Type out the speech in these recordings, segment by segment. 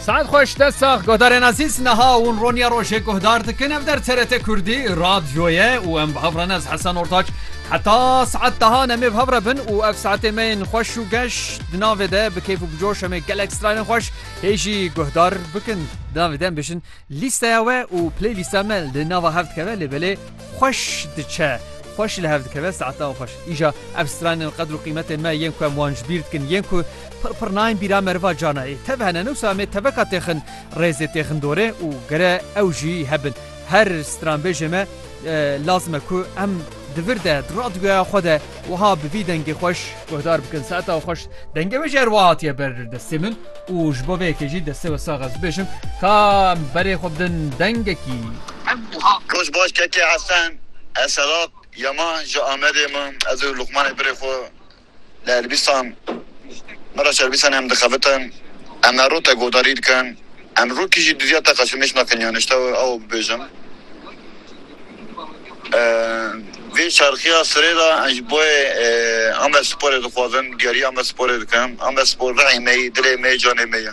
Saet xweş te sax godarên azîz neha hûn roniya rojê guhdar dikin ev der TRT Kurdî radyoye û em bi hevran ez Hesen Ortaç heta saet deha em ê bi hevre bin û ev saetê me yên xweş û geş di navê de bi keyf û bi coş em ê gelek stranên xweş hê jî guhdar bikin di navê de em bêjin lîsteya we û playlîsta me li nava hev dikeve lê belê xweş diçe. Xweş li hev dikeve saetan xweş. Îja ev stranên qedr û qîmetên me yên ku em wan ji bîr dikin yên ku Pir pir nayên bîra meriva cana ê. Tev hene ne wisa em ê teveka têxin rêzê têxin dorê û gere ew jî hebin. Her stranbêjê me lazim e ku em di vir de di radyoya xwe de wiha bi vî dengê xweş guhdar bikin. Saeta xweş dengê wê jî her wiha hatiye ber destê min û ji bo vê yekê jî destê we sax ez bibêjim ka em berê xwe bidin dengekî. Roj baş keke Hesen. Eselat ya ma ji Amedê ma ez û Luqmanê birê xwe. Li Elbîstan me re servîsa nem dixebitin. Em her roj te guhdarî dikin. Em rokî jî duviya te qeşemêş nakin yan ji te we awe bibêjim. Vê çarxiya sirê de em ji boyê Amed Sporê dixwazin diyarî Amed Sporê dikin. Amed Spor rihê me yî, dilê me yî, canê me ye.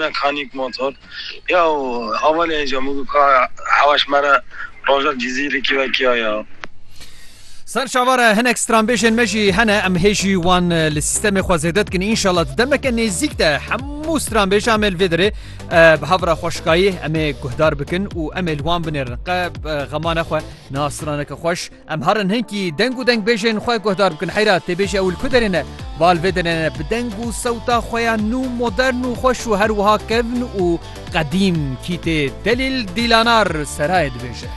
Mekanîk motor ya û hevalê hêja min got ka hewaş mere rojek Cizîrê kêvekiya ya. Ser çawa re hinek stranbêjên me jî hene em hê jî wan li sîstemê xwe zêde dikin înşallah di demeke nêzîk de hemû stranbêjan me li vê derê bi havra xweşikayî em ê guhdar bikin û em ê li wan binêrin qe xemane xwe niha straneke xweş Em harin hinkî deng û dengbêjên xwe guhdar bikin heyra têbêjî ew li ku derê ne, va li vê derê ne bi deng û sewta xwe ya nû, modern û xweş û her wiha kevn û qedîm Kîtê Delîl Dîlanar Serayê dibêje.